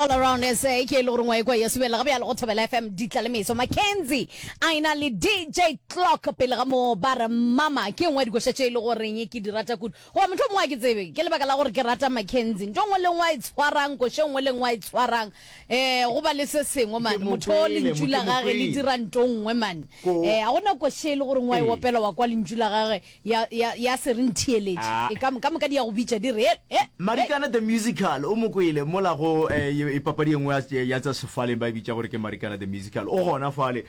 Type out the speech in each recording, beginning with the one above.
All Around SA ke e le goreng wa ekwa ya subelela ga bjalo go Thobela FM ditla le meso Mackenzie a e na le DJ Clock pele ga moo ba re mama ke engwe ya dikoša tše e le goreng ke di rata kudu goba motlho mongwe a ke tsebe ke lebaka la gore ke rata Mackenzie nto ngwe le ngwe a e tshwarang koša engwe le ngwe a e tshwarang um go ba le se sengwe mane mo motho kwele, lentšu mo la ke mo gage le kwele. dira nto ngwe mane Ko- um ga gona koša e le goreng wa e Ee. opela wa kwa lentšu la gage ya, ya, ya se re ntheeletše. E ka, ka moka di ya go bitša, di re, He, he, he! Marikana the Musical, o mo kwele mola go, eh, papadi e nngwe ya, ya tša sefaleng, ba e bitša gore ke Marikana the Musical. O gona fale,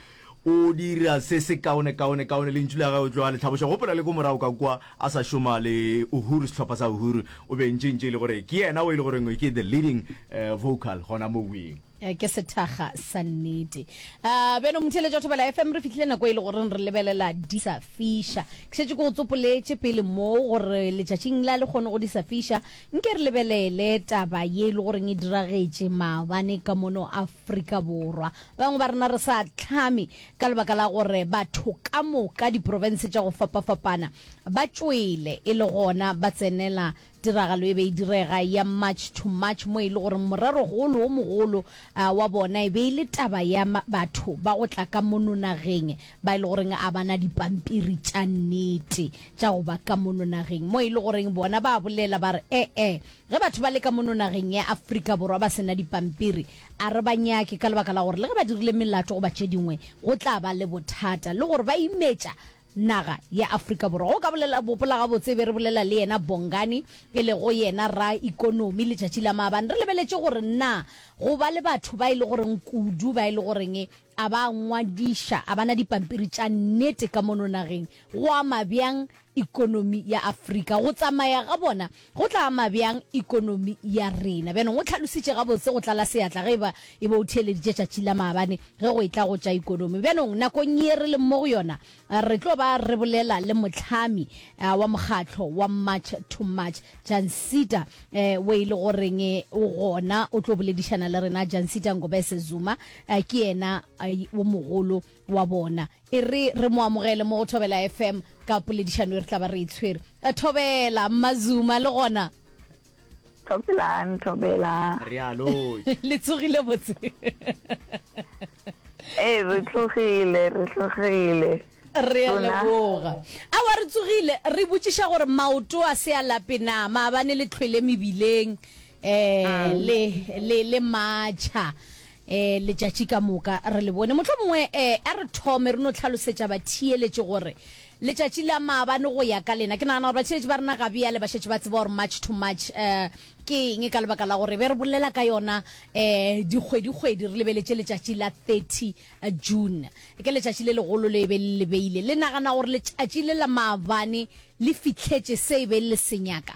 o dira se se kaone, kaone, kaone, lentšu la gagwe o tlo a le tlhaboša. Gopola le ko morago ka kwa, a sa šoma le Uhuru, sehlopha sa Uhuru, o be ntše, ntše e le gore ke yena o e le goreng ke the leading, eh, vocal gona moweng. Eh, ke sethaga sa nnete um beno motheletša o thobela fm re fitlhile nako e le goreng re lebelela disa fisha ke šetse ke go tsopoletše pele mo gore letšatšing la le kgone go disa fisha nke re lebelele taba ye e le goreng e diragetše maabane ka mono afrika borwa bangwe ba rena re sa tlhame ka lebaka la gore batho ka moka diporofense tša go fapafapana ba tšwele e le gona ba tsenela Tiragalo e be e direga ya March to March mo e le goreng morerogolo wo mogolo wa bona e be e le taba ya batho ba go tla ka mono nageng ba e le goreng a ba na dipampiri tša nnete tša go ba ka mono nageng mo e le goreng bona ba bolela ba re ee ge batho ba le ka mono nageng ya Afrika Borwa ba sena dipampiri a re ba nyake ka lebaka la gore le ge ba dirile melato goba tše dingwe go tla ba le bothata le gore ba imetša Naga ya Afrika Borwa. Go ka bolela gopola gabotse e be re bolela le yena Bongani e lego yena ra ikonomi letšatši la maabane re lebeletše gore na go ba le batho ba e le goreng kudu ba e le goreng a ba ngwadiša a ba na dipampiri tša nnete ka mono nageng go ama bjang ikonomi ya Afrika go tsamaya ga bona Go tla ama bjang ekonomi ya rena? Bjana o hlalositše gabotse go tlala seatla ge e ba e be o theeleditše tšatši la maabane ge go etla go tša ekonomi. Bjanong nakong ye re leng mo go yona, re tlo ba re bolela le mohlami wa mokgatlo wa March to March, Jancita wo e le goreng o gona o tlo boledišana le rena. Jancita Ngobese Zuma ke yena wo mogolo wa bona. E re re mo amogele mo go Thobela FM ka poledišano e re tla ba re e tshwere. A Thobela, Mazuma le gona. Thobelang, Thobela. Realoi. Le tsogile botse. Ee, re tlogile, re tlogile. Re a leboga. Awa re tsogile, re botšiša gore maoto a se a lape na, maabane le tlhwele mebileng eh le le le matšha. E, letšatši ka moka re le bone. Mohlomongwe e, a re thome re no tlhalosetša batheeletši gore letšatši la maabane go ya ka lena. Ke nagana gore batheeletši ba rena ga bjale ba šetše ba tseba gore March to March e, ke eng ka lebaka la gore be re bolela ka yona e, dikgwedikgwedi re lebeletše letšatši la 30 June. Ke letšatši le legolo le e be le le beile. Le nagana gore letšatši le la maabane le fihletše se e be le se nyaka?